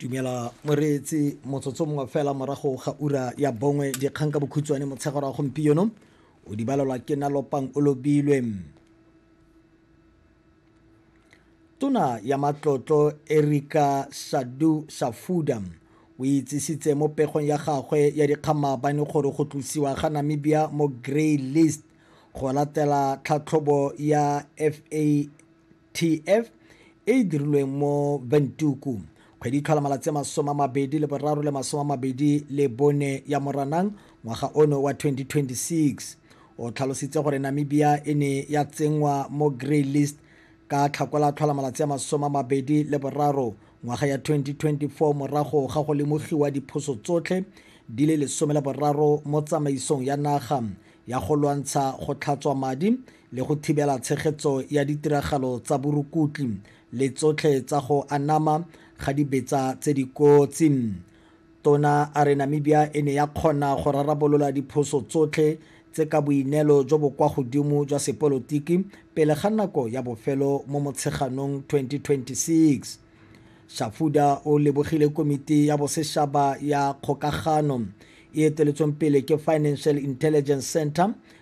dumela moreetsi motsotso mongwe fela morago ga ura ya bongwe dikgang ka bokhutshwane motshegaro wa gompieno o di balelwa ke nalopang o lobilwe tona ya matlotlo erika sadu safuda o itsisitse mo pegong ya gagwe ya dikgang maabane gore go tlosiwa ga namibia mo grey list go latela tlhatlhobo ya fa TF, e e dirilweng mo Windhoek, kgwedi e tlhola malatsi a masome a mabedi le boraro le masome a mabedi le bone ya Moranang ngwaga ono wa 2026. O tlhalositse gore Namibia e ne ya tsenngwa mo Grey List ka Tlhakole a tlhola malatsi a masome a mabedi le boraro ngwaga ya 2024 morago ga go lemogiwa diphoso tsotlhe di le lesome le boraro mo tsamaisong ya naga ya go lwantsha go tlhatswa madi le go thibela tshegetso ya ditiragalo tsa borukutli le tsotlhe tsa go anama ga dibetsa tse di kotsi. Tona a re Namibia e ne ya kgona go rarabolola diphoso tsotlhe tse ka boineelo jo bo kwa godimo jwa sepolotiki pele ga nako ya bofelo mo Motsheganong 2026. Shafuda o lebogile Komiti ya Boseshaba ya Kgokagano e eteletsweng pele ke Financial Intelligence Centre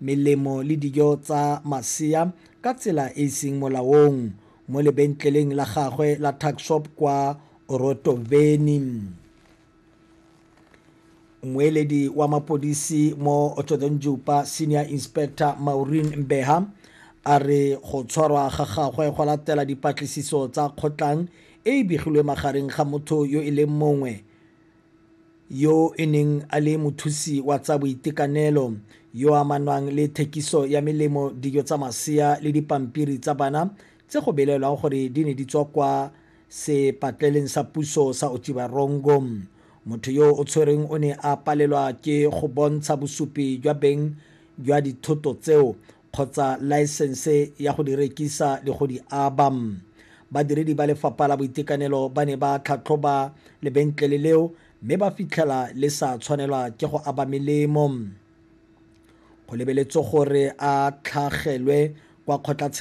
melemo le dijo tsa masea ka tsela e e seng molaong mo lebentleleng la gagwe la tuckshop kwa Orotoveni. Mmueledi wa mapodisi mo Othodonjupa Senior Inspector Maureen Mbeha a re go tshwarwa ga gagwe go latela dipatlisiso tsa kgotlang e e begilwe magareng ga motho yo e leng mongwe yo e neng a le mothusi wa tsa boitekanelo yo a amanwang le thekiso ya melemo dijo tsa masea le dipampiri tsa bana tse go belaelwang gore di ne di tswa kwa sepatleleng sa puso sa Otjiwarongo motho yo o tshwereng o ne a palelwa ke go bontsha bosupi jwa beng jwa dithoto tseo kgotsa laesense ya go di rekisa le go di aba. Badiredi ba lefapha la boitekanelo ba ne ba tlhatlhoba lebentlele leo mme ba fitlhela le sa tshwanelwa ke go aba melemo go lebeletswe gore a tlhagelwe kwa kgotlatshekelo